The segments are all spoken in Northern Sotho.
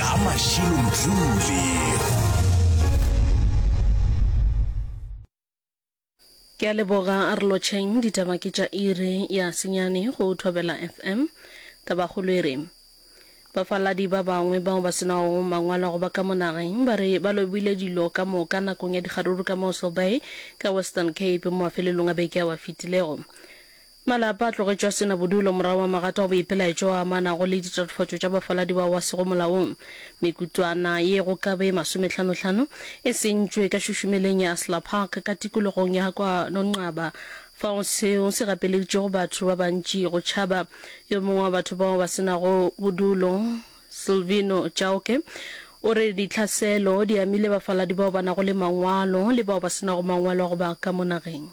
ka mašilomjule ke a leboga a re lotšheng ditaba ke tša iri ya senyane go thobela fm tabakgolo e re bafaladi ba bangwe bao ba senago mangwalo a go ba ka mo nageng ba re ba lobile dilo ka moka nakong ya dikgaruru ka moso bay ka western cape mo mafelelong a beke ao a fetilego Malapa a tlogetšwe a se na bodulo morago ga magato a boipelaetšo a amanago le ditatofatšo tša bafaladi bao ba sego molaong. Mekutlwana ye go ka be masometlhanotlhano e sentšwe ka šušumeleng ya Asla Park ka tikologong ya kwa Nonqaba fao seo se gapeleditšego batho ba bantši go tšhaba. Yo mongwe wa batho bao ba se nago bodulo, Silvino Chauke, o re ditlhaselo di amile bafaladi bao ba nago le mangwalo le bao ba se nago mangwalo a go ba ka mo nageng.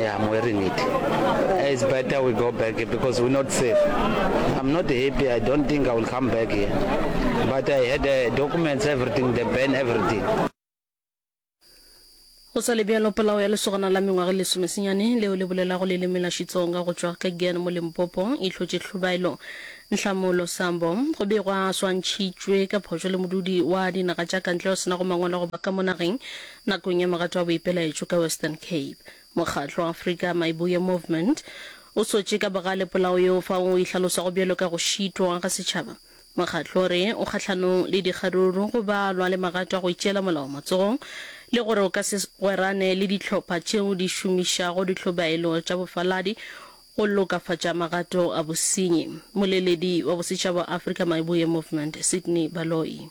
Yeah, I'm wearing it. It's better we go back because we're not safe. I'm not happy. I don't think I will come back here. But I had uh, documents, everything, the ban, everything. go sa le bjalo polao ya lesogana la mengwaga e lesomesenyane leo le bolelago leleme la xitsonga go tšwa kegen mo limpopo e hlotše tlhobaelo ntlhamolo sambo go be gwa swantšhitšwe ka phošo le modudi wa dinaga tša kantle o senago mangwalo goba ka mo nageng Nakong ya mogato wa boipelaetšo ka Western Cape, mokgatlo wa Afrika Maibuye Movement o sotše ka bogale polao yeo fao o e hlalosago bjalo ka go šitwa ga setšhaba. Mokgatlo o re o kgahlanong le dikgaruru, go balwa le magato a go itšeela molao matsogong le gore o ka se gwerane le dihlopha tšeo di šomišago ditlhobaelo tša bofaladi go lokafatša magato a bosenyi. Moleledi wa bosetšhaba wa Afrika Maibuye Movement, Sydney Baloyi.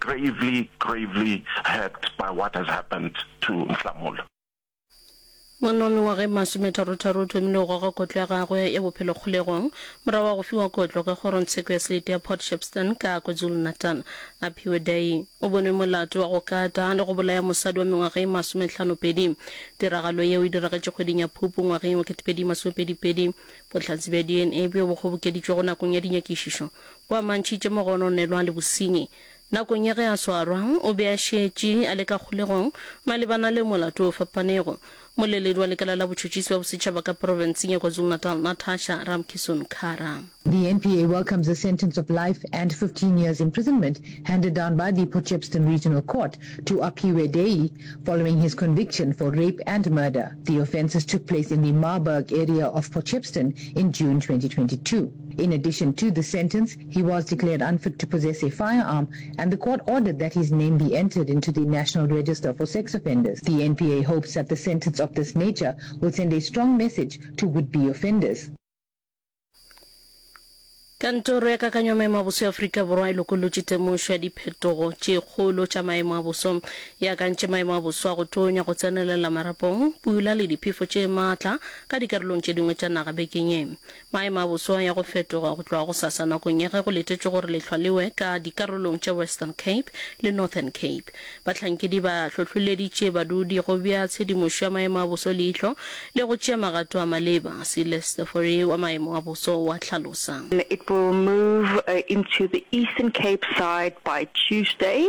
Gravely, gravely hurt by what has happened to Nhlamulo. Ngwana wa mengwaga e masometharotharo o thomile go goga kotlo ya gagwe ya bophelo kgolegong morago ga go fiwa kotlo ka kgorongtsheko ya selete ya Port Shepstone ka KwaZulu-Natal. Aphiwe Dayi o bonwe molato wa go kata le go bolaya mosadi wa mengwaga e masometlhanopedi. Tiragalo yeo e diragetše kgweding ya Phupu ngwageng wa 2022. Bohlatse bja DNA bjo bo kgobokeditšwego nakong ya dinyakišišo O a mantšhitše mogononelwa le bosenyi. Nakong ya ge a swarwa, o be a šetše a le ka kgolegong malebana le molato o fapanego. Moleledi wa Lekala la Botšhotšhisi bja Bosetšhaba ka Profenseng ya KwaZulu-Natal, Natasha Ramkisson-Kara. The NPA welcomes the sentence of life and fifteen years imprisonment handed down by the Potchefstroom Regional Court to Aphiwe Deyi following his conviction for rape and murder. The offences took place in the Marburg area of Potchefstroom in June twenty twenty two. In addition to this sentence, he was declared unfit to possess a firearm and the court ordered that his name be entered into the National Register for Sex Offenders. The NPA hopes that the sentence of this nature will send a strong message to would-be offenders. Kantoro ya Kakanyo ya Maemo a Boso ya Afrika Borwa e lokolotše temošo ya diphetogo tše kgolo tša maemo a boso. E akantše maemo a boso a go tonya, go tsenelela marapong, pula le diphefo tše matla ka dikarolong tše dingwe tša naga bekeng ye. Maemo a boso a ya go fetoga go tloga gosasa nakong ya ge go letetšwe gore lehlwa le we ka dikarolong tša Western Cape le Northern Cape. Bahlankedi ba hlohloleditše badudi go bea tshedimošo ya maemo a boso leihlo le go tšea magato a maleba, Silestefori wa maemo a boso wa hlalosa. It will move into the Eastern Cape side by Tuesday.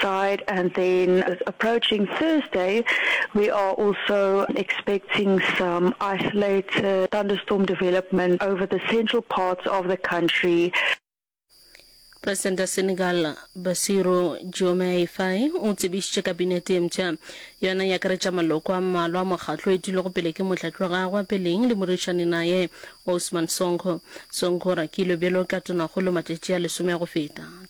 side and then approaching Thursday we are also expecting some isolated thunderstorm development over the central parts of the country. Presidente ya Senegal Bassirou Diomaye Faye o tsebišitše kabinete e mpsha yona e akaretša maloko a mmalwa a mokgatlo e dulego pele ke motlatši wa gagwe wa peleng le morišani naye Ousmane Sonko. Sonko o rakilwe bjalo ka tonakgolo matšatši a lesome a go feta.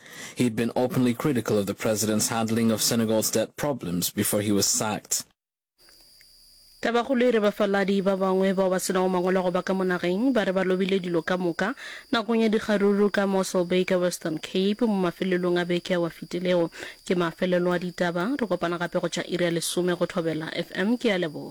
He'd been openly critical of the president's handling of Senegal's debt problems before he was sacked. Tabakgolo e re bafaladi ba bangwe bao ba se nago mangwalo go ba ka mo nageng ba re ba lobile dilo ka moka nakong ya dikgaruru ka Mossel Bay ka Western Cape mo mafelelong a beke ao a fetilego. Ke mafelelo a ditaba. Re kopana gape go tša iri ya lesome go Thobela FM. Ke a leboga.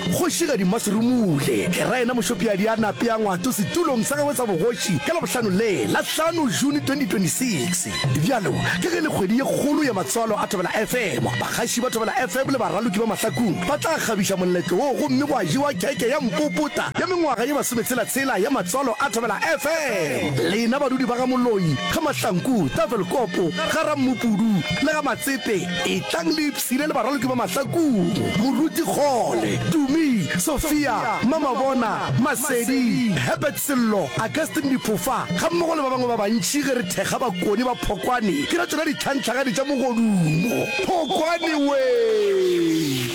Kgoši Gadimasi Rumule le raena Mošopiadi a nape a ngwato setulong sa gagwe sa bogoši ka Labohlano le la hlano June 2026. Bjalo ka ge e le kgwedi ye kgolo ya matswalo a Thobela FM, bagaši ba Thobela FM le baraloki ba mahlakung ba tla kgabiša moletlo wo gomme gwa jewa keke ya mpopota ya mengwaga ye masometshela-tshela ya matswalo a Thobela FM. Lena badudi ba ga Moloi, ga Mahlanku, Tafelkopo, ga Rammopudu le ga Matsepe etlang le Sile le baraloki ba Mahlakong, Moruti Kgole, Tumi, Sophia, Mamabona, Masedi, Herbert Sello, Augustine Diphofa gammogo le ba bangwe ba bantši ge re thekga bakoni ba Phokwane ke ra tšona ditlhanhlagadi tša mogodumo. Phokwane wee!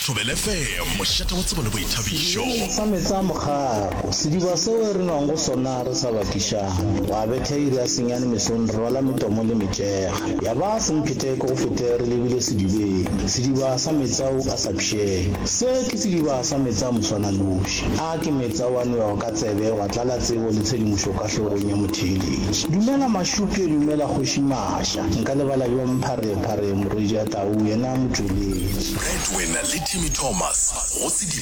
Thobela FM, mošate wa tsebo le boithabišo. Sedibe sa meetse a mokgako, sediba seo re nwago sona re sa bakišane. Gwa betha iri ya senyane mesong re rwala metomo le metšega. Ya ba semphete ke go fete re lebile sedibeng, sediba sa metsa u a sa pšhee. Se ke sediba sa metsa moswananoši. A ke metsa wa nwewa ka tsebe wa tlala tsebo le tshedimošo ka hlogong ya motheeletši. Dumela Mašuke, dumela Kgoši Maša. Nka lebala bjang Pharephare, morwedi a tau, yena motšweletši. Breadwinner le Timmy Thomas go sedibeng.